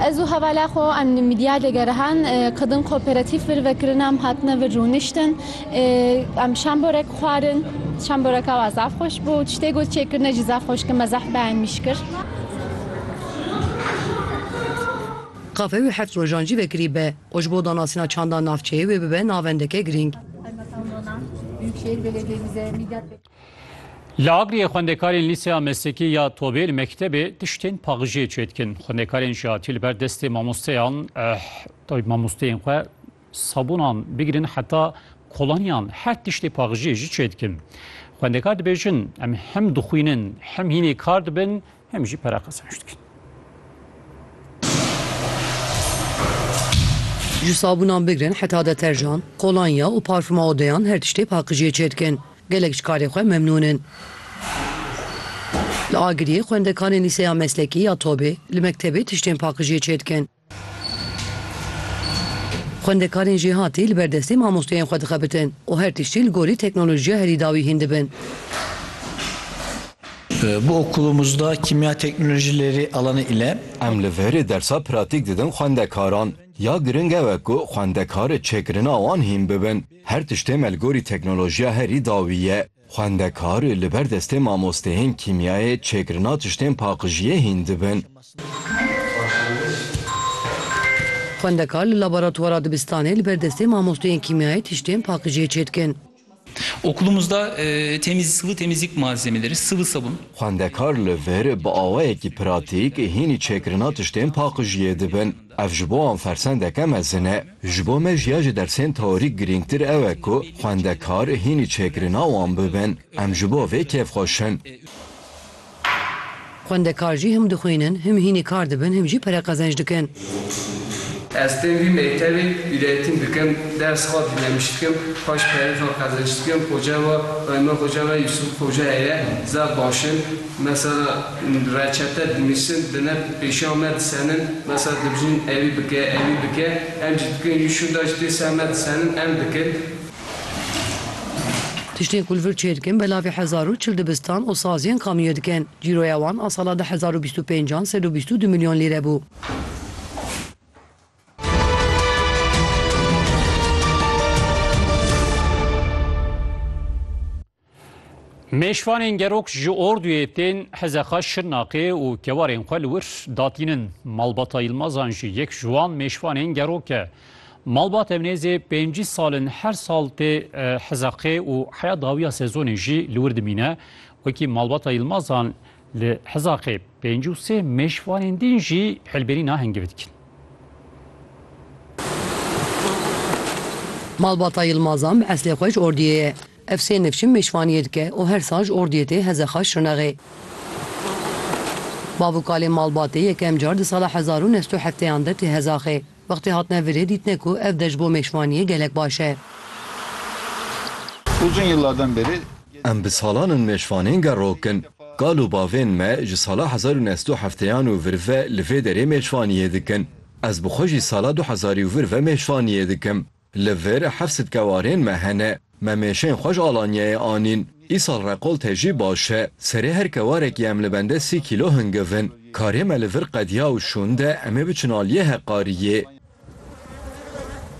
Ez û hevala xwe em li Midyad e gerihan ku din koperatîf vir vekirin em hatine vir rûniştin. Em şamborek xwarin, şamboreka wan zaf xweş bû. Tiştê ku çêkirine jî zaf xweş kir me zaf behnmîş kir. Kafe wê heft rojan jî vekirî be û ji bo danasîna çanda navçeyê wê bibe navendeke girîng. Li Agiriyê xwendekarên Lîseya Meslekî ya Tobê li mektebê tiştên paxijê çêdikin. Xwendekarên jî hatî li ber destê mamosteyan mamosteyên xwe sabûnan bigirin heta kolonyan her tiştê paxijê jî çêdikin. Xwendekar dibêjin em hem dixwînin hem hînê kar dibin Hem jî pere qezanç dikin. Ji sabunan bigirin heta deterjan, kolanya û parfuma odeyan her tiştê paqijiyê çêdikin. Gelek ji karê xwe memnûn in. Li Agiriyê xwendekarên lîseya meslekî ya Tobê li mektebê tiştên paqijiyê çêdikin. Xwendekarên jêhatî li ber destê mamosteyên xwe dixebitin û her tiştî li gorî teknolojiya herî dawî hîn dibin. Bi okulumuzda Kimya Teknolojileri alanı ile. Em li verê dersa pratîk didin xwendekaran. Ya giring ew e ku xwendekar ê çêkirina wan hîn bibin. Her tiştê me li gorî teknolojiya herî dawî ye. Xwendekar li ber destê mamosteyên kîmyayê çêkirina tiştên paqijiyê hîn dibin. Xwendekar li laboratwara dibistanê li ber destê mamosteyên kîmyayê tiştên paqijiyê çêdikin. Okulumuzda temiz sıvı temizlik malzemeleri, sıvı sabun. Xwendekar li vir bi awayekî pratîk hînî çêkirina tiştên paqijiyê dibin. Ev ji bo wan fersendeke mezin e. Ji bo me jî ya ji dersên teorîk girîngtir ew e ku xwendekar hînî çêkirina wan bibin. Em ji bo vê kêfxweş in. Xwendekar jî him dixwînin, him hînî kar dibin, him jî pere qezenc dikin. Ez tên vî mektebê bîretîn dikim, ders xwe bînemiş dikim, xweş perê xwe qezenc dikim. Xoca we, Xwendina xoca me Yûsûf Xoca heye, zaf baş in. Mesela reçete dinivîsin dine pêşiya me disenin mesela dibijin ewî bike ewî bike em jî dikin jî şûnda jî tê ser me disenin em dikin. Tiştên ku li vir çê dikin belavê hezar û çil dibistan û saziyên kamîyo dikin. Cîroya wan a sala du hezar û bîst û pênc an sed û bîst û du milyon lîre bû. Mêşvanên gerok ji orduyê tên Hezexa Şirnaqê û kewarên xwe li wir datînin. Malbata Yilmazan jî yek ji wan mêşvanên gerok e. Malbat ev nêzê pêncî sal in her sal tê Hezexê û heya dawiya sezonê jî li wir dimîne. Wekî malbata Yilmazan li Hezexê pêncî û sê mêşvanên din jî hilbirîna hingivî dikin. Malbata Yilmazan bi eslê xwe ji orduyê ye. Ev sê nivçim mêşvaniyê dike û her sal ji ordiyê tê heze xwe şirnexê. Bavûkalê malbatê yekem car di sala hezar û neh sed û hefteyan de tê hezaxê. Wextê hatine virê dîtine ku ev deş bo mêşvaniyê gelek baş e. Uzun yıllardan beri Em bi salan in mêşvanên gerrok in. Kal û bavên me ji sala hezar û neh sed û hefteyan û vir ve li vê derê mêşvaniyê dikin. Ez bi xwe jî sala du hezarî û vir ve mêşvaniyê dikim. Li vir heft sitke warên me hene. Me mêşên xwe ji Alanyayê anîn. Îsal reqolte jî baş e. Serê her kewarekî em li bende sî kîlo hingiv in. Karê me li vir qediya û şûnde em ê biçin aliyê heqariyê.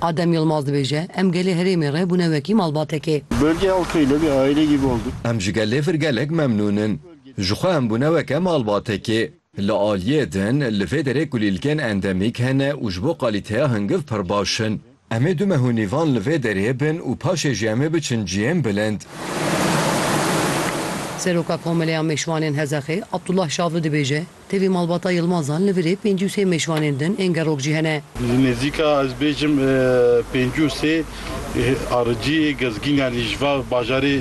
Adem Yilmaz dibêje, Em gelê herêmê re bûne wekî malbatekê. Bölge halkıyla bir aile gibi olduk. Em ji gelê vir gelek memnûn in. Ji xwe em bûne weke malbatekê. Li aliyê din, li vê derê kulîlkên endemîk hene û ji bo qalîteya hingiv pir baş in. Em ê du meh û nîvan li vê derê bin û paşê jî em ê biçin cihên bilind. Seroka Komeleya Mêşvanên Hezexê, Abdullah Şavi dibêje, Tevî malbata Yilmazan li virê pêncî û sê mêşvanên din ên gerok jî hene. Li nêzîka ez bêjim pêncî û sê aricî gezgîn yanî ji va bajarê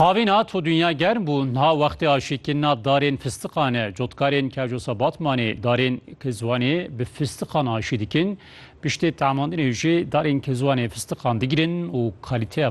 Havîna to dinya germ bû, niha wextê aşîkîna darên fistiqan e. Cotkarên Kerjosa Batmanê darên Kizwanê bi fistiqan aşî dikin. Piştê tamandinê jî darên Kizwanê fistiqan digrin û kalîteya